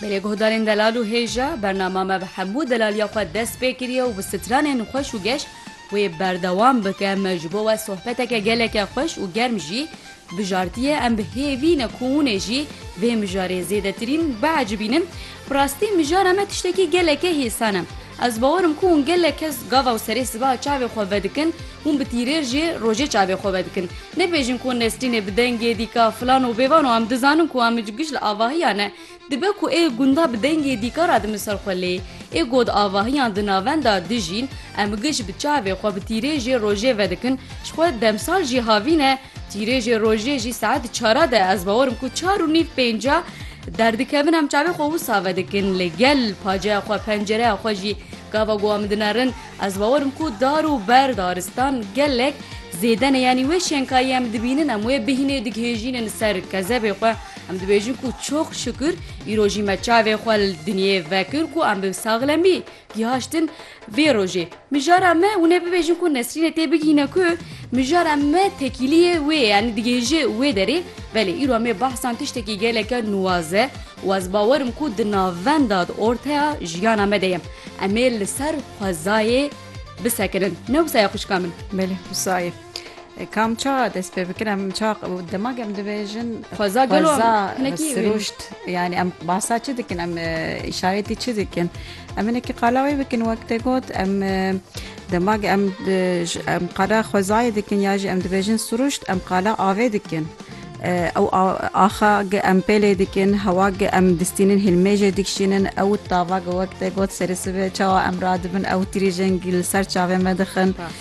Belê guhdarên delal û hêj e, bernama me bi hemû delaliya xwe dest pê kiriye û bi stranên xweş û geş wê berdewam bike, me ji bo we sohbeteke geleke xweş û germ jî bijartiye, em bi hêvî ne ku hûnê jî vê mijarê zêdetirîn biecibînin, bi rastî mijara me tiştekî geleke hêsan e. Ez bawer im ku hûn gelek kes gava û serê sibeha çavê xwe vedikin, hûn bi tîrêr jî rojê çavê xwe vedikin. Nebêjin ku Nesrînê bi dengê dîka filan û bêvan û em dizanin ku Amic giş li avahiyan e. Dibe ku ê gunda bi dengê dîka re di min ser xwe lê ê god avahiyan di navenda dijîn, em giş bi çavê xwe bi tîrêr jî rojê vedikin, ji xwe demsal jî havîn e, Çîrêjê rojê jî saet çara de ez bawer im ku çar û nîv pênca derdikevin em çavê xwe wisa vedikin lê gel paceya xwe pencereya xwe jî gava ku em dinerin ez bawer im ku dar û ber daristan gelek zêdene yanî wê şenkayî em dibînin em wê bihînê dighêjînin ser kezebê xwe em dibêjin ku çok şükür îro jî me çavê xwe li dinyê vekir ku em bi saxlemî gihaştin Vê rojê mijara me hûn ê bibêjin ku Nesrînê tê bigihîne ku mijara me tekîliyê wê ye yanî digihêje wê derê belê îro em ê behsan tiştekî geleke nuwaz e û ez bawer im ku di navenda di orteya jiyana me de ye em ê li ser xwezayê bisekinin ne wisa ye xwişka min? Belê wisa ye. Kam ça dest pê bikin em ça demak em dibêjin xweza gelo sirûşt yanî em basa çi dikin em îşaretî çi dikin em hinekî qala wê bikin wek te got em demak em em qala xwezayê dikin ya jî em dibêjin sirûşt em qala avê dikin ew axa ge em pêlê dikin hewa ge em distînin hilmêjê dikişînin ew tava ge wek te got serê sibe çawa em radibin ew tirîjengî li ser çavê me dixin.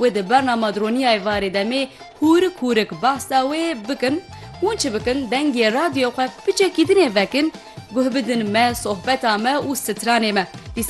Wê di bernama Droniyayê varê demê hûrik hûrik behs da wê bikin, hûn çi bikin dengê radyoyê xwe piçekî dinê vekin, guh bidin me, sohbeta me û stranê me.